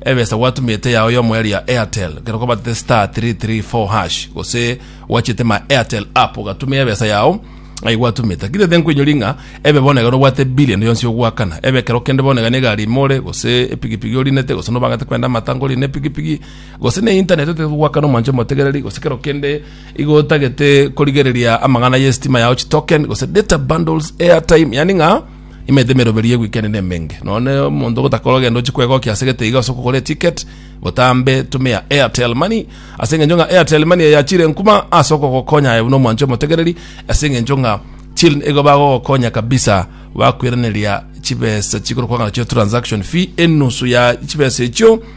Ebesa gwatumete yao yomo eria ya Airtel, ekero kwabatete star three three four hash, gose gwachete my Airtel app ogatuma ebesa yao, ai gwatumete. Lakini tete nkoinyori ng'a ebe bono ekero obwate bill ende yonsi ogoakana, ebe ekero kende bono iga ne egari ime ore, gose epigipigi orinete, gose nobangate kwenda amata ngorire ne epigipigi, gose ne internet otagete goakana omwancho omotegereri, gose kero kende igo otagete korigereria amang'ana ya estima yao chitoken, gose data bundles, airtime, yaani ng'a. Imaete emeroberi ye weekend ne emenge. None omonto gotakora ogenda ochi kwegokia ase gete iga ase okogora eticket, botambe tumia Airtel Money ase engencho ng'a Airtel Money eyachire nkuma ase okogokonya aye buna omwancho omotegereri ase engencho ng'a chil nigo bagogokonya kabisa bakwiraneria chibesa chikorokwa ng'a nachio transaction fee enusu ya chibesa echio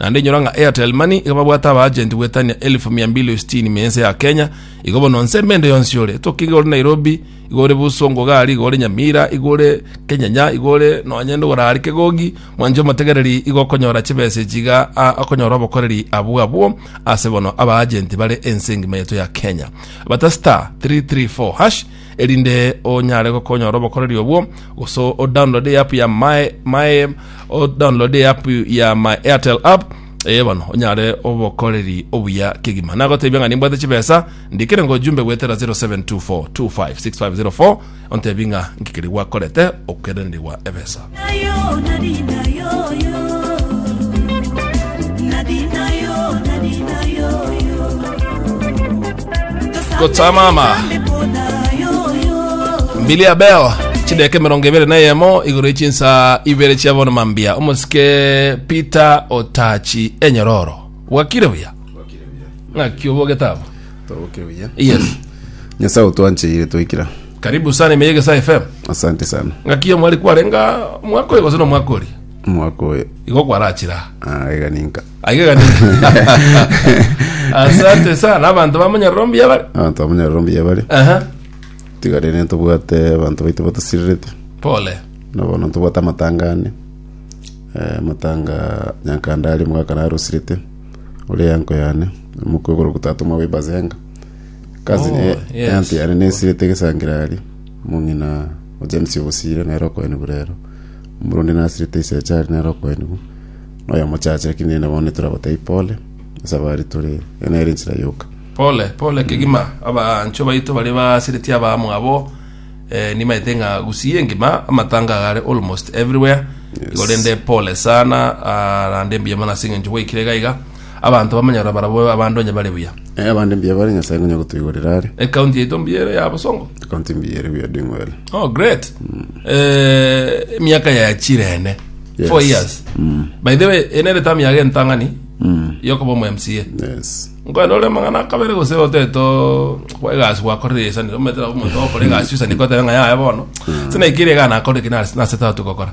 Naende inyora ng'a Airtel Money iga babwate abaagenti goetania elfu mia mbili o sitini mia ense ya Kenya, igo bono nse emende yonsi ore. Toki iga ore Nairobi, iga ore Buso, Ngogari, iga ore Nyamira, iga ore Kenyanya, iga ore nonye ndogorari Kegogi, mwanche omotegereri igo okonyora chibesa echi iga a, okonyora obokoreri abwo abwo ase bono abaagenti bare ense engima yaito ya Kenya. Bata star 334 hash erinde onyare gokonyora obokoreri obwo, gose o download eapp ya my my o download eapp ya my Airtel app eh bono onyare obokoreri obuya kegima nagotebia ng'a nimbwate chibesa ndikire ngo jumbe gwetera 0724256504 ontebi ng'a ngikeri gwakorete okerenerigwa ebesa Gotsamama. Mbili ya beo chideka emerongo ebere na eyemo igoro ya chinsa ibere chia bono mambia omosike peter otachi enyororo bwakire buya ng'aki obogete abo Toboke buya. yes nyasaye otwancheire twaikira karibu sana imeye gesa fm asante sana ng'akiya mwari kwarenga mwaka oyo gose na omwaka ori omwaka oyo igo kwarachira ah, iga ninka aigega ni asante sana abanto bamonyerero mbuya bari abanto bamonyerero mbuya bare Aha. tigare ne tobwate abanto baito batosirerete pole nabono tobwate amatanga ane Eh, amatanga nyankanda ari mwaka narosirete ore yanko yane omokwe goro gotatu mwa webazenga Kazi Oh, eh, yes. ante yare nesirete egesangera aria omong'ina o James ogosire nere okoeni burero omorundi nasirete isaacha aria nere okoeni bu noyo mochache lakini nene bono toragotebi pole ase abari tore eye nere ensira yoka pole pole kegima abancho baito bare basireti abaamo abo eh, nimaete ng'a gusii engima amatanga gare almost everywhere Yes. igo rende pole sana ah, rande mbuya mono ase eng'encho gwaikire gaiga Abanto bamanyora barabwo abande onye bare buya. Eh, abande mbuya bare Nyasae ngonya gotoigorera are. Ecounty yaito mbuya ere ya Bosongo. Ecounty mbuya ere we are doing well. Oh, great. Eh, emiaka ya chirene. Yes. Four years. By the way, enere tamu yage entang'ani Mm. yokoba omu MCA. Yes. Nkwenda ore mang'ana akabere gose oteto kwa egasi gwakorire esanire ometera omonto okore egasi osanire kotera ng'a yaya bono. Sinaikire egana akore kinasi nase tatu gokora.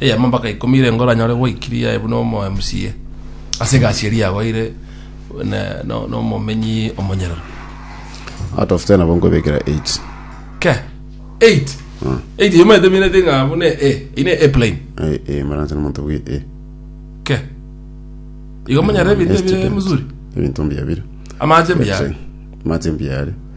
eyemo mpaka ikomi ere ngoranyore gwaikiri yaye buna omo MCA ase egasi eria yagoire ne- no- nomomenyi omonyerero Out of 10 abo nkwebekera 8. ke 8 8 eyemo eteminete ng'a buna e ine e plain Eh, eh, maranse nomonto bwe eh. ke igo monyare ebinto Yes, ebire student. muzuri Ebinto mbiabire. amache mbiya Mache mbiare.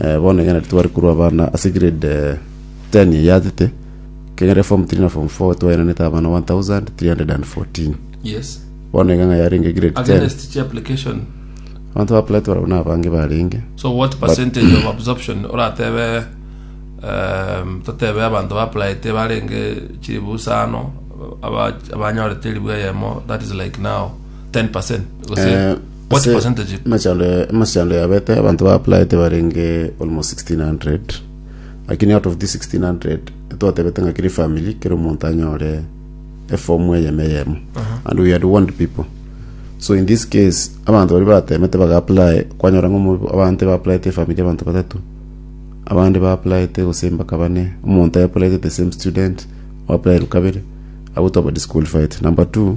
Bono ekero tware korwa abana ase grade ten eyachete, ekero form three na form four twaenanete abana one thousand three hundred and fourteen. Yes. Bono iga ng'a yarenge grade ten. Against chi application. Abanto ba apply twarabwo na abange barenge. So what percentage of absorption oratebe um, totebe abanto ba applyete barenge chiribu isano aba- abanyorete eribu eyemo that is like now 10% gose Eh, What Ase percentage? emechando ya- emechando yabete abanto ba applied barenge almost 1600 lakini out of this 1600 twatebete ng'a kiri family kero omonto anyore efomu eyemo eyemo and we had warned people so in this case abanto bari batemete baga apply kwanyora ng'a omo- abande ba applied efamili abanto batato abande ba applied gose mbaka bane omonto a applied the same student o applied kabere agwo twaba disqualified number two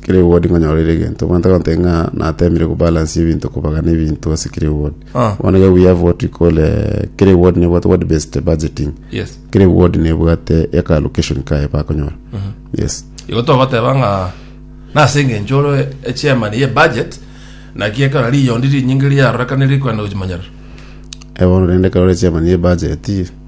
Clipboard nkonyora ere egento omanyete gonteba ng'a natemire ku balance ebinto kobagana ebinto ase clipboard Ah. bono iga we have what we call eh, clipboard nebwate word based budgeting yes clipboard nebwate eka allocation kaye bakonyora yes igo togoteba ng'a nase engencho ore echairman ye budget naki ekero riyondi rinyinge riarorekane rikwenda gochimanyerera Eh, bono rende ekero ore chairman ye budget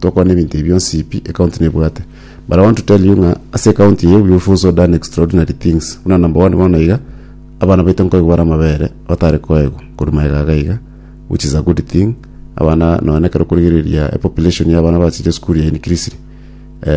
Tokwana ebinto ebi bionsi pi ecounty nebwate. But I want to tell you ng'a ase ecounty eye we have also done extraordinary things. Buna number one bono iga abana baito nkoigwa bare amabere batare koegwa korwa magega iga iga which is a good thing. Abana nonya nekero okorigereria epopulation y'abana bachiche esukuru ya increased. Eh,